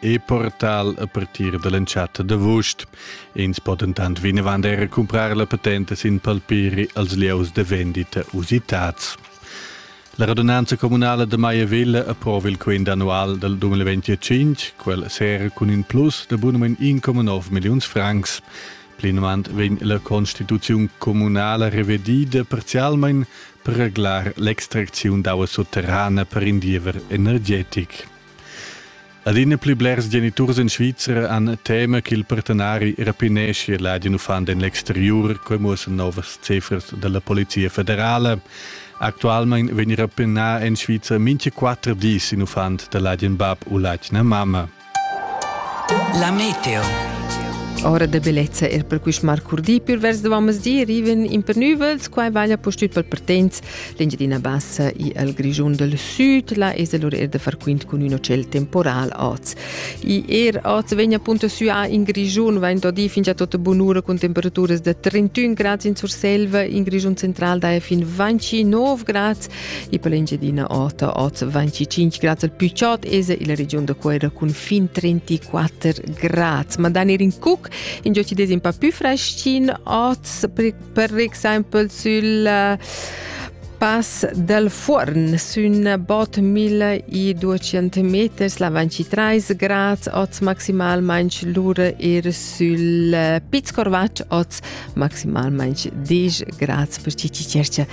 e portal a partir dall'entschatta d'avust. Ins po dentant vinavant era cumprar la patente sin palpiri als lieus de vendita usitats. La radunanza comunala de Maiavilla approva il quint annual del 2025, quel sera cun in plus de bunament 1,9 millions francs. Plinavant vegn la constituziun comunala revedida parzialmein per reglar l'extracziun d'aua sotterrana per in diever energetic. Adina pli blers geniturs in Svizra han tema ch'il partenari rapineschia ladin uffant en l'exteriur, quai muossan novas cifras dalla Polizia federala. Actualmein vegn rapinà en Svizra mincha quattro dis in uffant da ladin bab u ladina mamma. La meteo. Ora de bellezza er per quist marcurdi per vers de vammes di riven in per nüvels, quai vaglia postüt pel pertens L'Engiadina Bassa i al Grischun del Süd la es allora er da far quint cun ün hotel temporal oz. I er oz vegna appunto süa in Grischun, vain da dir fingia tota bunura cun temperaturas da 31 grads in Surselva, in Grischun central da è fin 29 grads, e per l'Engiadina Ota oz 25 grads al Picciot es illa region da Cuera cun fin 34 grads. Ma dann er in Cuc, in gioci des in pa più freschin oz, per exempel sul eh, Pass del Fuorn sün bot 1200 meters la 23 grads oz maximalmain lur er sül eh, Piz Corvatsch oz maximalmain 10 grads per Cici Cercia.